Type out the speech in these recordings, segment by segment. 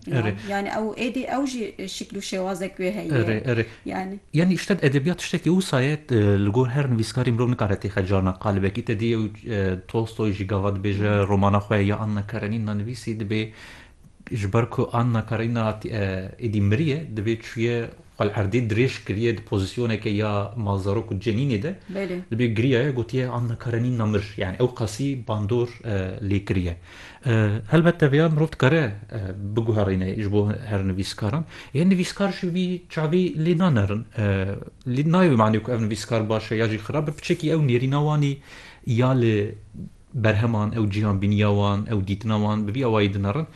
Erê. Yani ew êdî ew jî şikl û şêwazek wê heye. Erê, erê. Yani. Yani îşte edebiyat tiştekî wisa ye li gor her nivîskarî mirov nikare têxe cana qalibekî te dî ew Tolstoy jî gava dibêje romana xwe ya Anna Karenina nivîsî dibê ji ber ku Anna Karenina êdî miriye dibê çûye Xal Erdî dirêj kiriye di pozîsyoneke ya malzarok û cenînê de di bê girîyaye gotiye Anna Karenîna mir yanî ew qasî bandor lê kiriye. Helbet teveya mirov dikare biguherîne ji bo her nivîskaran yên nivîskar ji vî çavî lê nanerin lê nayê wê manê ku ev nivîskar baş e ya jî xirab e piçekî ew nêrîna wanî ya li berheman, ew cîhanbîniya wan, ew dîtina wan bi vî awayî dinerin.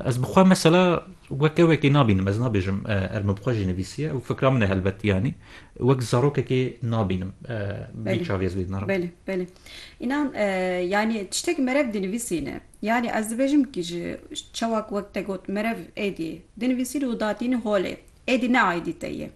Ez bi xwe mesela wek ewekê nabînim, ez nabêjim erm bi xwe jî nivîsiye, ew fikra min e helbet yanî wek zarokekê nabînim bi vî çavê ez wê dinerim. Belê, belê. Înan yanî tiştek merev dinivîsîne. Yanî ez dibêjim kî ji çawa ku wek te got merev êdî dinivîsîn û datîn holê. Êdî ne aîdî te ye.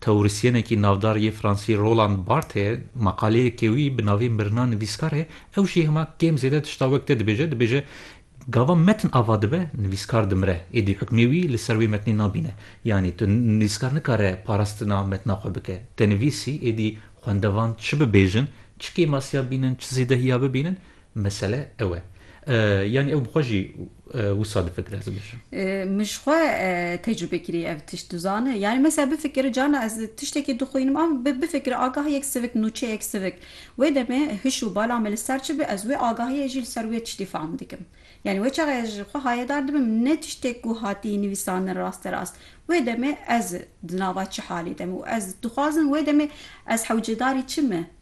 Teorisyenekî navdar yê Fransî Roland Barthe meqaleyeke wî bi navê Mirina nivîskar heye, ew jî hema kêm zêde tişta wek te dibêje, dibêje, Gava metin ava dibe, nivîskar dimire, êdî hukmê wî li ser wê metnê nabîne. Yanî tu nivîskar nikare parastina metina xwe bike. Te nivîsî, êdî xwendevan çi bibêjin, çi kêmasiya bînin, çi zêdehiya bibînin, Mesele ew e. Yanî ew bi xwe jî wisa difikire ez dibêjim. Min ji xwe tecrûbe kirî ev tişt dizane. Yanî mesela bifikir carna ez tiştekî dixwînim a bifikir agah yek sivik nûçeyek sivik wê demê hiş û bala me li ser çi be ez wê agahiyê jî li ser wê tiştî fehm dikim. Yanî wê çaxê ez ji xwe hayedar dibim ne tiştek ku hatî nivîsandin raste rast wê demê ez di nava çi halê de me û ez dixwazim wê demê ez hewcedarî çi me.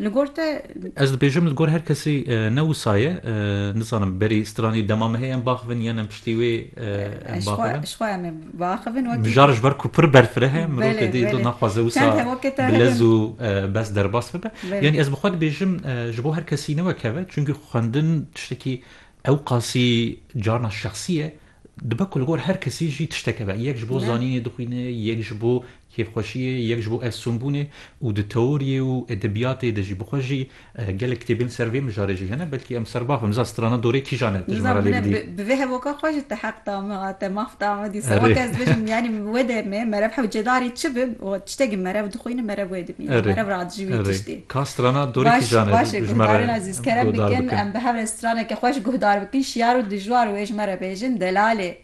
Li gor te. Ez dibêjim li gor her kesî ne wisa ye, nizanim berî stranî dema me hê em biaxivin yan em piştî wê em biaxivin. Ji xwe em ê biaxivin wekî. Mijar ji ber ku pir berfireh e mirov tê dê dil naxwaze wisa bilez û bes derbas bibe. Yanî ez bi xwe dibêjim ji bo her kesî ne wek hev e çunkî xwendin tiştekî ewqasî carna şexsî ye. Dibe ku li gor her kesî jî tiştek hebe. Yek ji bo zanînê dixwîne, yek ji bo Kêfxweşiyê yek ji bo efsûnbûnê û di teoriyê û edebiyatê de jî bi xwe jî gelek kitêbên ser vê mijarê jî hene. Belkî em serbav bin. Miza strana dorê kîjan e? Tu ji me re lê bidî. Miza bi vê hevoka xwe ji te heq da min a te maf da min dîsa. Weke ez dibêjim yanî wê demê merev hewl cêdarî çi bi tiştekî merev dixwînim merev wê dimîne merev radijî wî tiştî. Ka strana dorê kîjan e? Baş e guhdarên ezîz kerem bikin em bi hev re straneke xweş guhdar bikin şiyar û dijwar wê ji me re bêjin delalê.